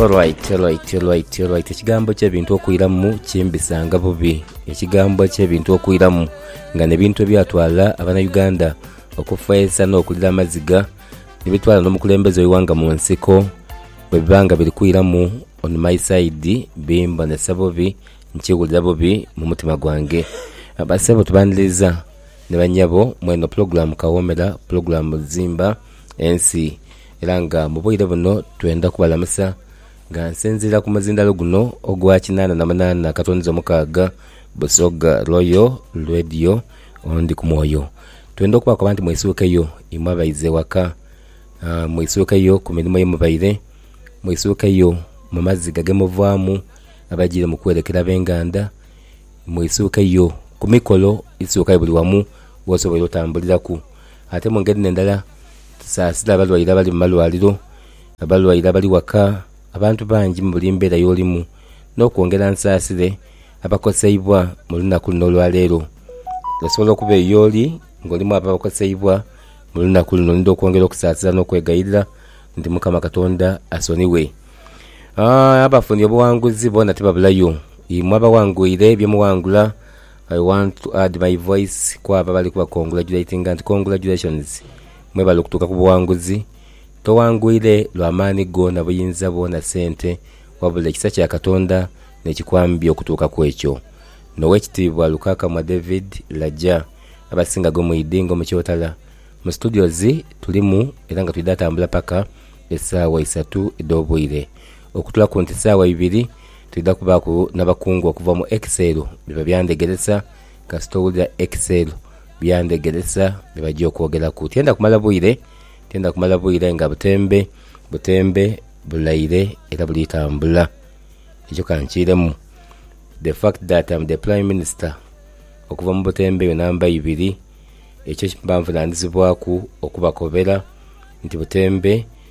Alright, alright, alright, alright. Ekigambo ky'ebintu okwiramu kimbisanga bubi. Ekigambo ky'ebintu okwiramu nga n'ebintu ebyatwala abanauganda okufeesa n'okulira amaziga nibitwala n'omukulembeze w'eighanga mu nsiko bwe biba nga biri kwiramu on my side bimbonesa bubi nkiwulira bubi mu mutima gwange. Bassebo tubaniriza ni bannyabo mw'eno pulogulaamu Kawoomera, pulogulaamu Zimba Ensi. Era nga mu bwire buno twendha kubalamusa nga nsinziira ku muzindalo guno ogwa kinaana na munaana katwaniza omukaaga Busoga Royal Radio on Ndi ku mwoyo. Twendha okubakoba nti mwisuukeyo imwe abaiza ewaka, mwisuukeyo ku mirimo ye mubaire, mwisuukeyo mu maziga ge muvaamu abajiire mu kwerekera ab'enganda, mwisuukeyo ku mikolo isuukayo buli wamu wosoboire otambuliraku. Ate mu ngeri endala, tusaasira abalwaire abali mu malwaliro, abalwaire abali waka, abantu bangi mu buli mbeera y'olimu, n'okwongera nsaasire abakoseibwa mu lunaku luno olwa leero. Osobola okuba eyo y'oli ng'oli mw'abo abakoseibwa mu lunaku luno. Ndidha okwongera okusaasira n'okwegayirira nti Mukama Katonda asonighe. Aa, abafunye obuwanguzi boona tibabulayo. Imwe abawangwire bye muwangula, I want to add my voice ku abo abali kuba congratulatinga nti congratulations mwe bali okutuuka ku buwanguzi. Towangwire lwa maani go na buyinza bwo na sente wabula ekisa kya Katonda nekikwambya okutuuka ku ekyo. N'Owekitiibwa Lukakamwa David Laja abasinga gwe mwidhi nga omukyotala. Mu studios tulimu era nga twidha tambula paka esaawa isatu edh'obwire. Okutula ku nti saawa ibiri twidha kubaaku n'abakungu okuva mu Ekiseelo bye babyandegeresa. Kasita owulira Ekiseelo byandegeresa bye bajia okwogeraku. Tyenda kumala bwire, tyenda kumala bwire nga butembe butembe bulaire era buli tambula. Ekyo ka nkiiremu, the fact that am the Prime Minister okuva mu butembe eyo namba ibiri, ekyo mba nvunaanizibwaku okubakobera nti butembe.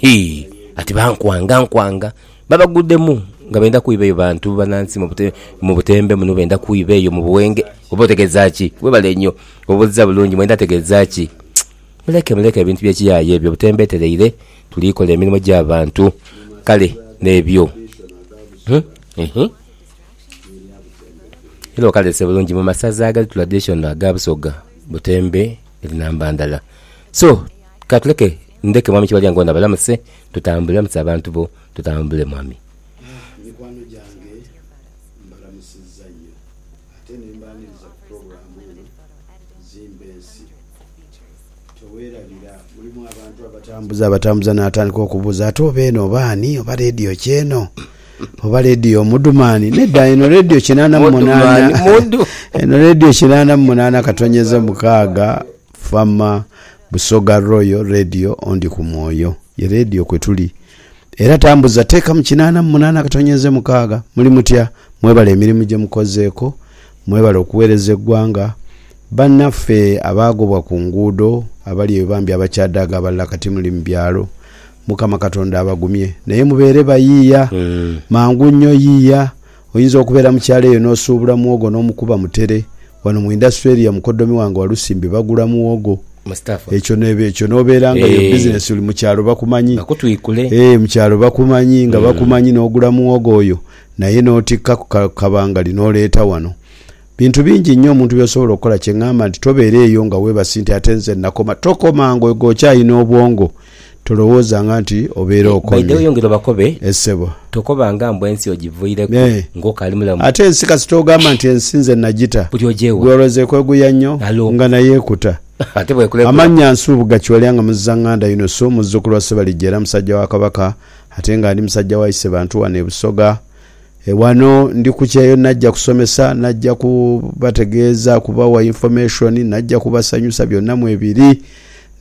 Hii ati bankwanga nkwanga. Babagudemu nga benda kwiba eyo bantu banansi mu butembe muno benda kwiba eyo mu buwenge oba otegeza ki? Webale nyo obuziza bulungi mwenda ategeza ki? Muleke muleke ebintu bye kiyaye ebyo butembe tereire tuli kola emirimo gya bantu kale nebyo eeh. Era okalese bulungi mu masaza agali traditional aga busoga butembe eri namba ndala. So, ka tuleke ndheke Mwami Kibalyango ono abalamuse, tutambule. Lamusa abantu bo, tutambule, Mwami. Aah, mikwano gyange, mbalamusizza nnyo, ate ne mbaaniriza ku pulogulaamu eno, Zimba Ensi. Teweerabira, mulimu abantu abatambuza, abatambuza n'atandika okubuuza, ate oba eno oba ani? Oba leediyo ki eno? Oba leediyo Omudumani? Nedda, eno leediyo kinaana mu munaana, eno leediyo kinaana mu munaana katonnyeze mukaaga. Fama Busoga Royal Radio Ondi ku Mwoyo ye Radio kwe tuli era tambuza teeka mu kinaana mu munaana akatonyeze mukaaga. Muli mutya? Mwebale emirimu gye mukozeeko. Mwebale okuweereza eggwanga. Bannaffe abaagobwa ku nguudo, abali eyo bambi abakyadaaga abalala kati muli mu byalo, Mukama Katonda abagumye. Naye mubeere bayiiya. Mangu nnyo yiiya. Oyinza okubeera mu kyalo eyo n'osuubula muwogo n'omukuba mutere. Wano mu indasitule eriyo mukoddomi wange Walusimbi bagula muwogo. Mustafa. Ekyo n'eba ekyo n'obeera nga yo Eeh. bizinesi oli mu kyalo bakumanyi. Bakutwikule. Eeh, mu kyalo bakumanyi, nga bakumanyi n'ogula muwogo oyo naye n'otikka ku ka kabangali n'oleeta wano. Bintu bingi inho omuntu by'osobola okukola kye ngamba nti tobeera eyo nga weebasi nti ate nze nakoma. Tokoma nga okyalina obwongo. Tolowoozanga nti obeera okomye. By the way yongera obakobe. Eh ssebo. Tokobanga mbu ensi ogivuireku Eh. ng'okali mulamu. Ate ensi kasita ogamba nti ensi nze nagita, Buli oja ewa. gw'olowooza ekweguya nnyo Alo. nga nayo ekuta. Ate bw'ekurekura. Amannya, Nsubuga Kiwalya nga Muzizaŋŋanda Yunusu, muzzukulu wa Ssebalijja era musajja wa Kabaka ate nga ndi musajja wa Isebantu wano e Busoga. Ghano ndi ku kyeyo naja kusomesa, naja ku bategeeza, kubawa information, naja kubasanyusa byonna mwebiri.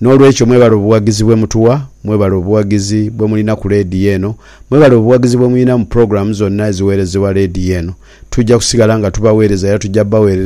N'olwekyo mwebale obuwagizi bwe mutuwa, mwebale obuwagizi bwe mulina ku leediyo eno, mwebale obuwagizi bwe mulina mu program zonna eziweerezebwa leediyo eno. Tuja kusigala nga tubaweereza era tuja baweerereza.